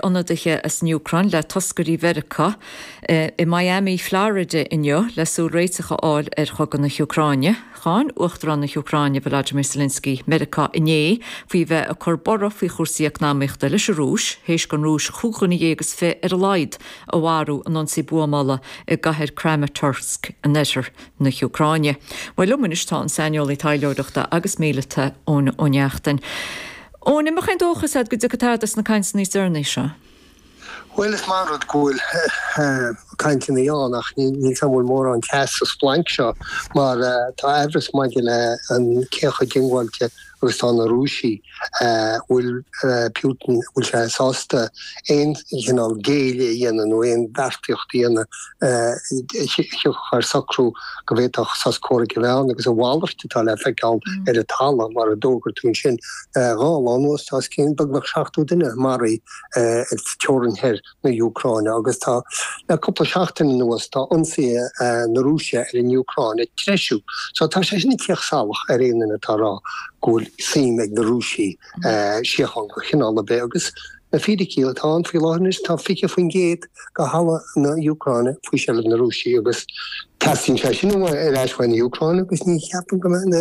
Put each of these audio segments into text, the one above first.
Ionadaithe as an Úcráin le toscairí Mheiriceá i Miami Florida inniu le súil réiteach a fháil ar chogadh na hÚcráine. Cháin Uachtarán na hÚcráine Volodymyr Zelensky Meiriceá inné faoi bheith ag cur borradh faoi chúrsaí eacnamaíochta leis an Rúis théis don Rúis cúig dhuine dhéag is fiche ar a laghad a mharú in ionsaí buamála i gcathair Kramatorsk in oirthear na hÚcráine. Liom anois tá an saineolaí taidhleoireachta agus míleata Eoin Ó Neachtain. Eoin, an mbeadh aon dóchas agat go dtiocfaidh tada as na cainteanna níos deireanaí seo? Bhuel, is maith an rud go bhfuil cainteanna ann ach níl a fhios agam an bhfuil mórán teas sa splanc seo mar tá amhras maidir le cé chomh diongbháilte agus tá na Rúisigh an bhfuil Putin an bhfuil sé sásta aon chineál géilleadh a dhéanamh nó aon bheartaíocht a dhéanamh a thabharfadh socrú go bhféadfadh sos comhraic a bheith ann agus a mhalairt atá le feiceáil ar an talamh mar a d'fhógair tú ansin. Dhá lá anuas tá os cionn beagnach 70 duine a maraíodh i dteorainn thoir na hÚcráine agus tá le cúpla seachtain anuas tá ionsaí na Rúise ar an Úcráin ag treisiú. So tá sé sin ag tíocht salach ar aon duine atá a rá go bhfuil suim ag na Rúisigh i síocháin de chineál ar bith agus Na fíricí atá ann faoi láthair anois tá 20% de thalamh na Úcráine faoi seilbh na Rúisigh agus teastaíonn sé sin ar ais faoi an Úcráin agus ní cheapaim go mbeadh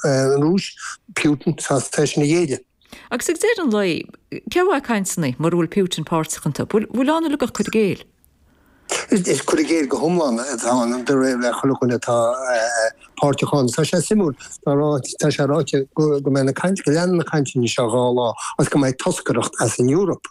an Rúis, Putin, sásta é sin a ghéilleadh. Agus ag deireadh an lae, cén mhaith cainteanna mura bhfuil Putin páirteach iontu? An bhfuil ann uilig ach cur i gcéill? Is cur i gcéill go hiomlán atá ann de réir chuile dhuine atá páirteach ann. Tá sé suimiúil, tá sé ráite go mbeidh na cainteanna, go leanfaidh na cainteanna seo dhá lá agus go mbeidh toscaireacht as an Eoraip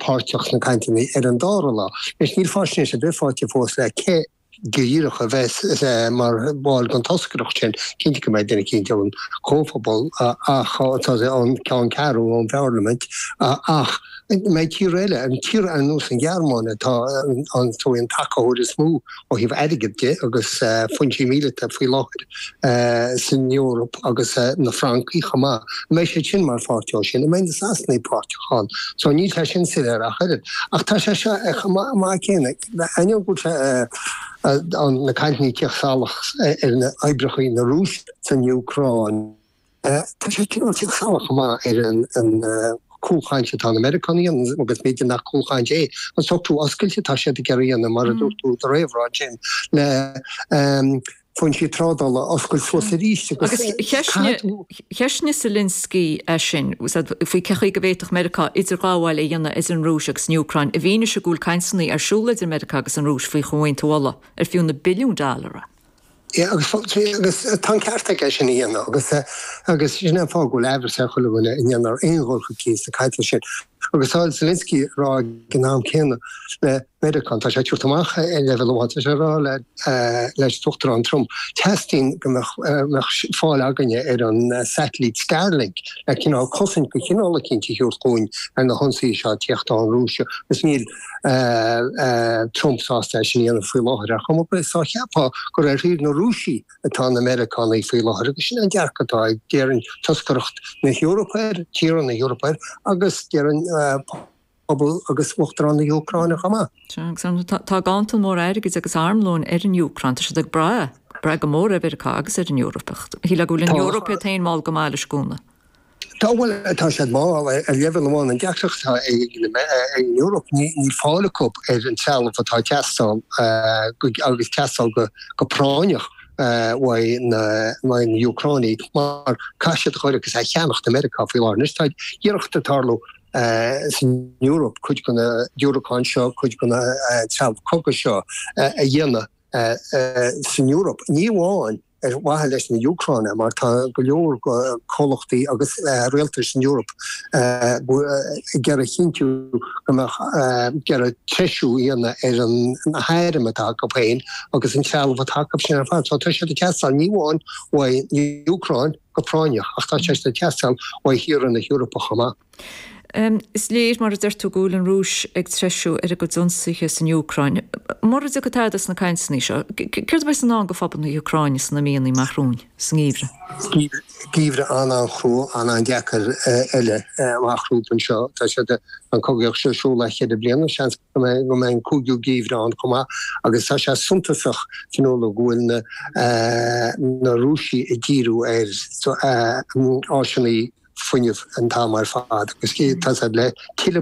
páirteach sna cainteanna ar an dara lá. Anois níl faisnéis ar bith faighte fós le cé. díreach a bheas mar bhall den toscaireacht sin. Cinnte go mbeidh duine éicint ón gComhphobal ach tá sé ann, ceann ceathrú ón bParlaimint ach an mbeidh tíortha eile, tír ar nós an Ghearmáin atá ar an tacaitheoir is mó ó thaobh airgead de agus foinsí míleata faoi láthair san Eoraip agus na Francaigh chomh maith. An mbeidh siad sin mar pháirt dó sin? An mbeidh na Sasanaigh páirteach ann? So níl sé sin soiléir ach oiread. Ach tá sé seo chomh maith céanna. Ainneoin go bhfuil na cainteanna ag teacht salach ar na oibreacha na Rúise san Úcráin, tá sé cineál ag tíocht salach chomh maith ar an cúlchaint atá na Meiriceánaigh a dhéanamh agus b'fhéidir nach cúlchaint é an socrú oscailte atá siad ag iarraidh a dhéanamh mar a dúirt tú i do réamhrá ansin le foinsí trádála a oscailt suas arís agus cheistnigh Zelensky é sin faoi cén chaoi a bhféadfadh Meiriceá idirghabháil a dhéanamh idir an Rúis agus an Úcráin i bhfianaise go bhfuil cainteanna ar siúl idir Meiriceá agus an Rúis faoi chomhaontú ola ar fiú na billiún dollára. Ie, agus tá an ceart aige é sin a dhéanamh agus sin an fáth go bhfuil amhras ar chuile dhuine an ndéanfar aon dhul chun cinn sna cainteanna sin. Agus tá Zelensky ag rá ag an am céanna le Meiriceá, tá sé ag tabhairt amach ar leibhéal amháin, tá sé ag rá leis an tUachtarán Trump, teastaíonn go mbeadh fáil againne ar an satailít Starlink le cineál cosaint de chineál eicínt a thabhairt dúinn ar na hionsaithe seo ag teacht ón Rúis, agus níl Trump sásta é sin a dhéanamh faoi láthair. Ach chomh maith is dá cheapfá gur ar thaobh na Rúisigh atá na Meiriceánaigh faoi láthair agus sin an dearcadh atá ag, déarfainn, toscaireacht na hEorpa air, tíortha na hEorpa air agus, déarfainn, pobal agus uachtarán na hÚcráine chomh maith. Sea, agus an, tá gantar mór airgid agus armlóin ar an Úcráin, tá siad ag brath, brath go mór ar Mheiriceá agus ar an Eoraip ach shílfeá go bhfuil an Eoraip iad féin mall go maith leis an gcúnamh. Tá, bhuel, tá siad mall ar leibhéal amháin. An deacracht atá ag an Eoraip, níl fáil acu ar an trealamh atá ag teastáil agus teastáil go práinneach uaidh na hÚcránaigh mar caithfidh siad a chur agus a cheannacht ó Mheiriceá faoi láthair. Anois tá iarracht ag tarlú san Eoraip cuid de na diúracáin seo, cuid de na trealamh cogaidh seo a dhéanamh san Eoraip. Ní amháin ar mhaithe leis na hÚcránaigh mar tá go leor comhlachtaí agus rialtais san Eoraip ag iarraidh a chinntiú go mbeadh ag iarraidh treisiú a dhéanamh ar an na hairm atá acu féin agus an trealamh atá acu sin ar fad. So tá siad ag teastáil ní amháin uaidh an Úcráin go práinneach ach tá sé ag teastáil ó thíortha na hEorpa chomh maith. Is léir, mar a deir tú, go bhfuil an Rúis ag treisiú ar a gcuid ionsaithe san Úcráin. Mura dtiocfaidh tada as na cainteanna seo, céard a bheidh i ndán do phobal na hÚcráine sna míonna amach romhainn, sa ngeimhreadh? Geimhreadh an-an-chrua, an-an-deacair eile amach rompu anseo. Tá siad, an cogaíocht seo, ar siúl le ceithre bliana, seans. go mbeidh an cúigiú geimhreadh ann chomh maith agus tá sé suntasach san uair go bhfuil na na Rúisigh ag díriú ar áiseanna fuinnimh an t-am ar fad agus tá le tuilleadh